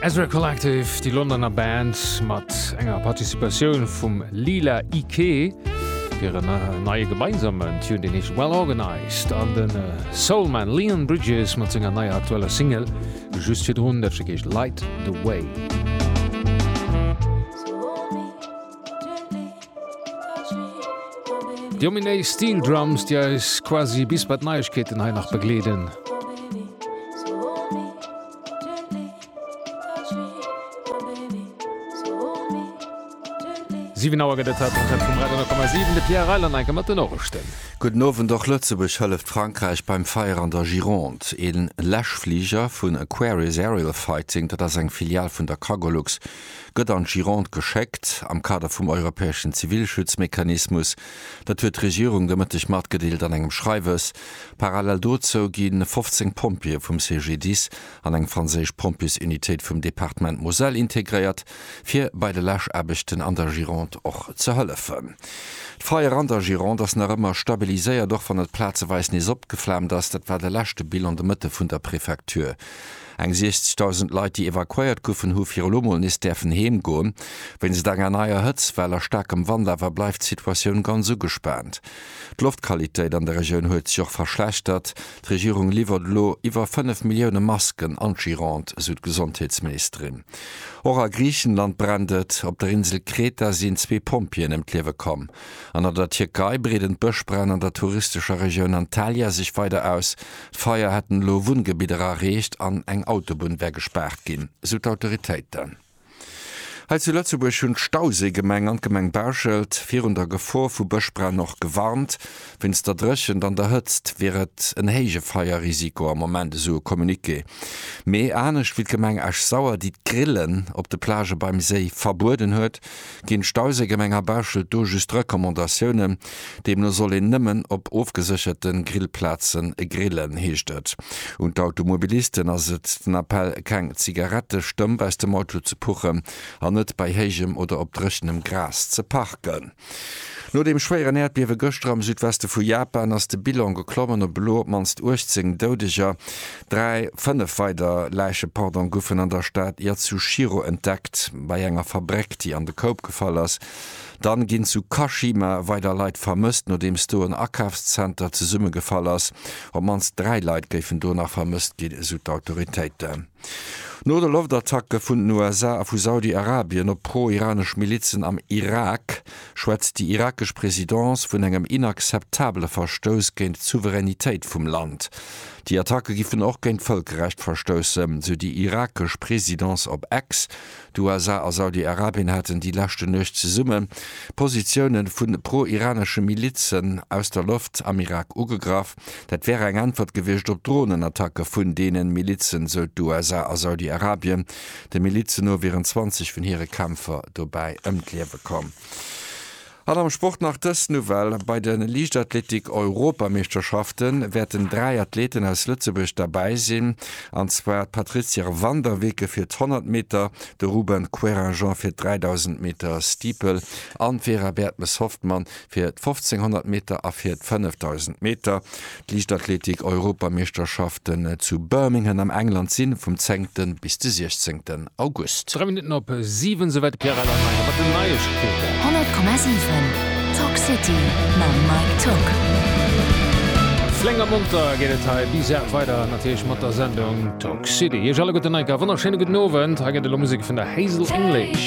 Ezra Collective, déi Londoner Band mat enger Participatioun vum Lila Iké, fir en neie gemeinsamen Tune, deen heescht Well Organized, an den Soulman Leon Bridges mat senger neier aktueller Single just virdrun, dat Stéck heescht Light the Way. Jo Minéi Steel Drums, déi eis quasi bis bei d'Neiegkeeten hei nach begleeden. Siwen Auer gëtt et hei d'Antenne vum Radio 10,7, de Pierre Reiland'Enke mat de Norichten. Gudden Owend, Och Lëtzebuerg hëlleft Frankräich beim Feier an der Gironde. Ee Läschfliger vun Aquarius Aerial Fighting, dat ass eng Filial vun der Cargolux, gëtt an d'Gironde geschéckt, am Kader vum europäeschen Zivilschutzmechanismus. Dat huet d'Regierung de Mëtteg matgedeelt an engem Schreiwes. Parallel dozou gi 15 Pompjeeë vum CGDIS an eng franséisch Pompjesunitéit vum Departement Moselle integréiert, fir bei de Läschaarbechten an der Gironde och ze hëllefen. D'Feier an der Gironde ass nach ëmmer stabiliséiert, och wann et plazeweis nees opgeflaamt ass. Dat war de leschte Bilan de Mëtte vun der Prefecture. Eng 60.000 Leit, déi evakuéiert goufen, hu fir elo mol nees däerfen heem goen. Wéinst enger neier Hëtztwell a staarkem Wand awer bleift d'Situatioun ganz ugespaant. D'Loftqualitéit an der Regioun huet sech och verschlechtert. D'Regierung liwwert elo iwwer 5 Millioune Masken an d'Gironde, esou d'Gesondheetsministerin. Och a Griichenland brennt et. Op der Insel Kreta sinn zwee Pompjeeën ëm d'Liewe komm. An an der Tierkei breeden d'Bëschbränn an der touristescher Regioun Antalya sech weider aus. D'Feier hätten elo Wunngebidder erreecht an eng Autobunn wär gespaart ginn, sou d'Autoritéiten. Hei zu Lëtzebuerg hunn d'Stauséigemeng an d'Gemeng Bauschelt virun der Gefor vu Bëschbränn och gewarnt. Wéinst der Dréchent an der Hëtzt wier et en héije Feierrisiko am Moment, esou e Communiqué. Mee anescht wéi d'Gemeng Esch-Sauer, déi d'Grillen op de Plagë beim Séi verbueden huet, Ginn d'Stauséigemeng a Bauschelt do just Recommandatiounen? Deemno soll een nëmmen op ofgesécherte Grillplaze grillen, heescht et. Un d'Automobilisten ass et den Appell, keng Zigarette stëmp aus dem Auto ze puchen an net bei héijem oder op dréchenem Gras ze parken. No dem schwéieren Äerdbiewe gëschter am Südweste vu Japan ass de Bilan geklommen op elo op d'mannst 18 Doudeger. Dräi, fënnef weider Läiche, pardon, goufen an der Stad Yatsushiro entdeckt, bei enger Fabréck, déi an de Koup gefall ass. Dann ginn zu Kashima weider Leit vermësst, nodeems do en Akafszenter zesummegefall ass. Op d'mannst dräi Leit géifen do nach vermësst ginn, esou d'Autoritéiten. No de Loftattacke vun den USA a vu Saudi-Arabien op pro-iranesch Milizen am Irak, schwätzt déi irakesch Presidence vun engem inakzeptabele Verstouss géint d'Souveränitéit vum Land. Déi Attacke giffen och géint d'Vëlkerrecht verstoussen, sou déi irakesch Presidence op X. D'USA a Saudi-Arabien haten déi leschte Nuecht zesumme Positioune vu pro-iranesche Milizen aus der Loft am Irak ugegraff. Dat wär eng Äntwert gewiescht op Dronenattacke vun deenen Milizen, sou d'USA a Saudi-Arabien. De Milizen no wieren 20 vun hire Kämpfer dobäi ëm d'Liewe komm. An am Sport nach dës Nouvelle, Bei de Liichtathletik-Europameeschterschafte wäerten dräi Athleeten aus Lëtzebuerg derbäi sinn, an zwar d'Patrizia van der Weken fir d'Honnert Meter, de Ruben Querinjean fir d'Dräidausend Meter Steeple an d'Vera Bertmes-Hoffmann fir d' 1500 Meter a fir d' 5000 Meter. D' Liichtathletik-Europameeschterschaften zu Birmingham am England si vum 10 bis de 16 August. Dräi Minutten op siwen, esou war de Pierre Alain Meier mat den Neiegkeeten. 100,7 Talk City mam Mike Tocq. Flénk a monter geet et hei bis 8 weider natierlech mat der Sendung Talk City. Iech alleguerten enk a wonnerschéine gudden Owend. Hei gëtt elo Musek vun der Hazel English.